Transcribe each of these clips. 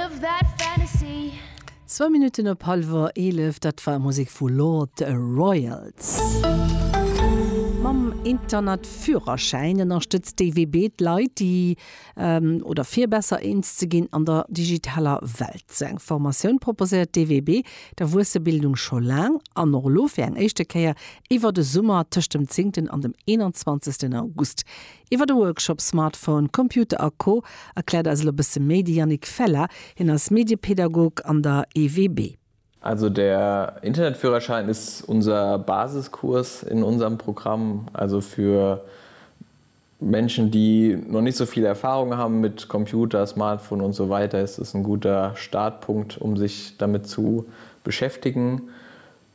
Of that fantasy. Zwou Minutten op hallwer eelef, dat war Musek vu Lord Royals. Mam Internetführerschäin ënnerstëtzt d'EWB d'Leit, déi oder fir besser eens ze ginn an der digitaler Welt. Sou eng Formatioun proposéiert d'EWB d'Erwuessebildung scho laang an och elo fir eng éischte Kéier iwwert e Summer tëscht dem 10 an dem 21 August. Iwwer de Workshop Smartphone, Computer a Co erkläert eis elo bësse méi de Yannick Feller. Hien ass Mediepädagog an der EWB. Also der Internetführerschein ist unser Basiskurs in unserem Programm, also für Menschen die noch nicht so viel Erfahrung haben mit Computer, Smartphone und so weiter ist es ein guter Startpunkt um sich damit zu beschäftigen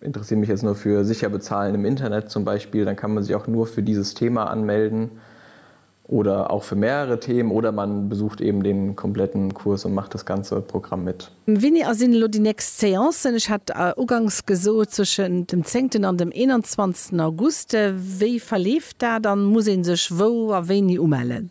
Interessiere mich jetzt nur für sicher bezahlen im Internet zum Beispiel, dann kann man sich auch nur für dieses Thema anmelden oder auch für mehrere Themen oder man besucht eben den kompletten Kurs und macht das ganze Programm mit. Wéini a sinn elo déi nächst Séancen? Ech hat uganks gesot zwëschen dem zéngten an dem eenanzwanzegsten August. Wéi verleeft dat an muss ee sech wou a wéini umellen?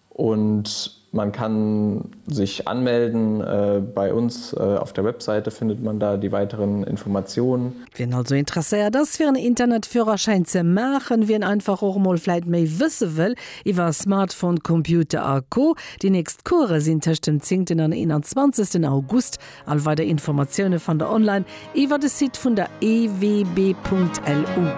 Und man kann sich anmelden bei uns auf der Webseite findet man da die weiteren Informationen. Wien also interesséiert ass fir en Internetführerschäin ze maachen, wien einfach och mol vläit méi wësse wëll iwwer Smartphone, Computer a Co. Déi nächst Course sinn tëscht dem zéngten an eenanzwanzegsten August. All weider Informatioune fannt der online iwwer de Site vun der EWB.lu.